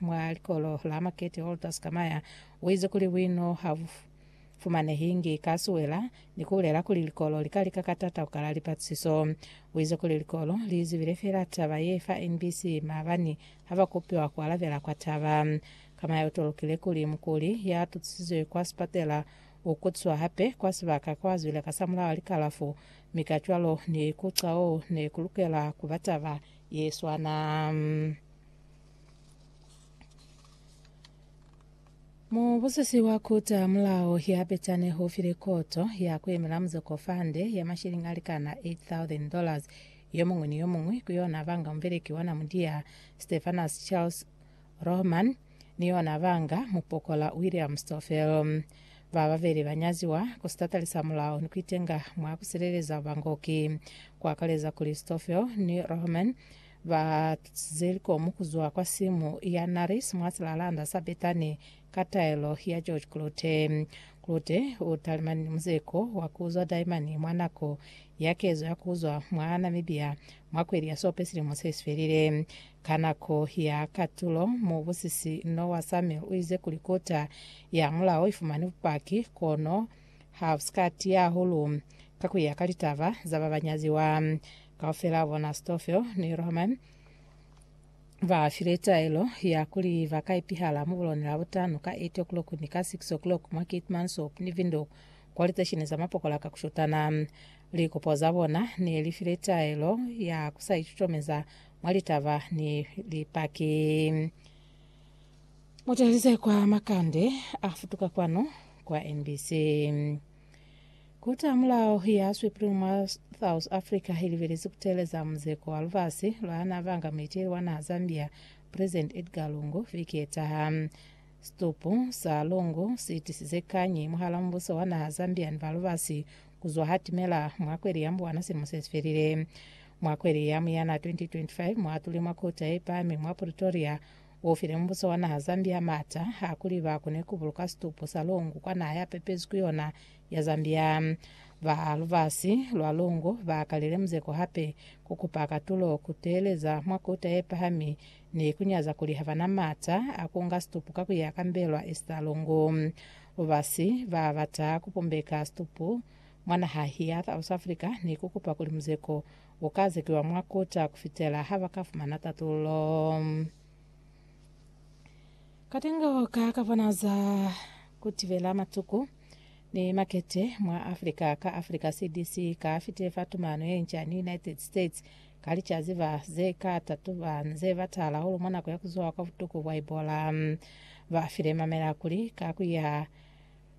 Mwa likolo la Makete Walter Skamaya uize kuli buino ha bu fumanehingi ka siwela ni kubulela kuli likolo li ka lika ka tata kukala lipatusiso. Uize kuli likolo liizibile feela taba ye fa NBC maabani ha ba kopiwa kualabela kwa taba. Skamaya utolokile kuli mukuli ya tutusizwe kwa sipatela u kutiswa hape kwa sibaka kwa zwile ka samulaho likalafu mi kacwalo ni ku cwalo ne ku lukela kuba taba ye swana. Mubusisi wa kuta mulao ya betane ho file koto ya kuemela muzoko fande ya mashilingi alikana 8,000 dollars yomuñwi ni yomuñwi ku yona banga mubeleki wa Namudia Stephanus Charles Rohman ni yona banga mupokola William Stoffel. Ba babeli ba nyaziwa ku sitatali sa mulao ni kuitenga mwa kusileleza bangoki, ku akaleza kuli Stoffel ni Rohman Ba zeliko mu ku zwa kwa simu ya Naris mwa silalanda sa Bethani ka taelo ya George Klute. Klute u talimani ni muzeko wa ku zwa Daimani mwa nako ya kezo ya ku zwa mwa Namibia mwa kweli ya Sope silimo se si felile. Ka nako ya katulo, mubusisi no wa Samuel u ize kuli kota ya mulao i fumani bupaki, kono ha si ka tiya hahulu ka ku ya ka litaba za ba ba nyaziwa. Kaufela bona Ahistofele ni Roman ba file taelo ya kuli ba ka ipihala mu buloni la butano ka 8 o'clock ni ka 6 o'clock mwa Keetmanshoop ni Windhoek kwa litesheni za mapokola ka kushutana. Likopo za bona ne li file taelo ya ku sa itutomeza mwa litaba ni Lipaki. Mutahelize kwa makande a futuka kwanu kwa NBC. Kuta mulao ya Supreme mwa South Africa ilibelezi kuteleza muzeko wa lubasi lwa na banga muiteli wa naha Zambia President Edgar Lungu viki yetaha. Situpu sa Lungu siitisize kanyi mwahala mubuso wa naha Zambia ni ba lubasi kuzwa hatimela mwa kweli ya Mbwana silimo sesifelile. Mwa kweli ya Muyana 2025 mwaatule mwa kota yepahami mwa Pretoria U file mubuso wa naha Zambia maata a kuli ba kone ku buluka situpu sa longo kwa naha ya pepezwi ku yona ya Zambia. Ba lubasi lwa longo ba kalile muzeko hape ku kupa katulo ku teeleza mwa Kota ye Pahami ni ku nyaza kuli ha ba na maata a ku nga situpu ka ku ya ka mbelwa esta longo. Lubasi ba bata ku pumbeka situpu Mwa naha ya South Africa ni ku kupa kuli muzeko u ka zekiwa mwa kota ku fitela ha ba ka fumana tatululo. Katengo ka ka bona za ku tibela matuku ni makete mwa Africa ka Africa CDC ka fitile fa tumano ye nca ni United States ka licazi ba ze ka tatuba nze ba tala hulu mwa nako ya ku zuha kwa butuku bwa Ebola. Ba file mamela kuli ka ku ya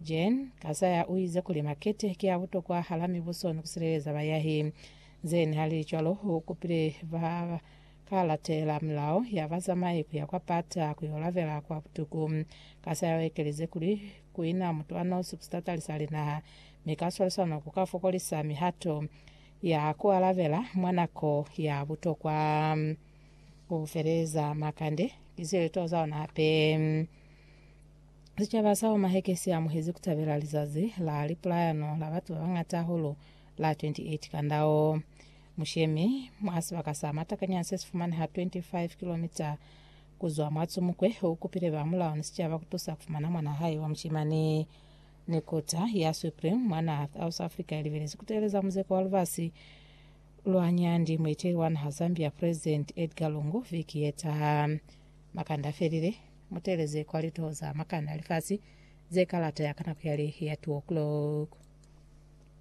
Jen Kazaya uize kuli makete ki a butokwa hala mibuso ni kusileleza bayahi. Zen halicwalo u kupile ba ka latela milao ya bazamai kuya kwa pata kuyo labela kwa butuku. Kazaya u ekelize kuli, Kuina mutu a nosi ku sitatali sa linaha mi ka swalisano ku ka fokolisa mihato ya ku alabela mwa nako ya butokwa. U feleza makande ki sileto za ona hape. Sicaba sa Omaheke si amuhezi ku tabela lizazi la lipulayano la batu ba bangata hahulu la 28 kandao mushemi mwa sibaka sa matakanyana se si fumaneha 25 kilomita ku zwa mwa Tsumukwe. U kupile ba mulao ni sicaba ku tusa ku fumana mwanaa hae wa mushimani. Ni kota ya Supreme mwa naha South Africa i libelezi ku teeleza muzeko wa lubasi lwa nyandi mueteli wa naha Zambia President Edgar Lungu viki ye taha. Makanda a felile. Muteeleze kwa lituho za makani a lifasi ze kalata ya ka nako yali ya two o'clock.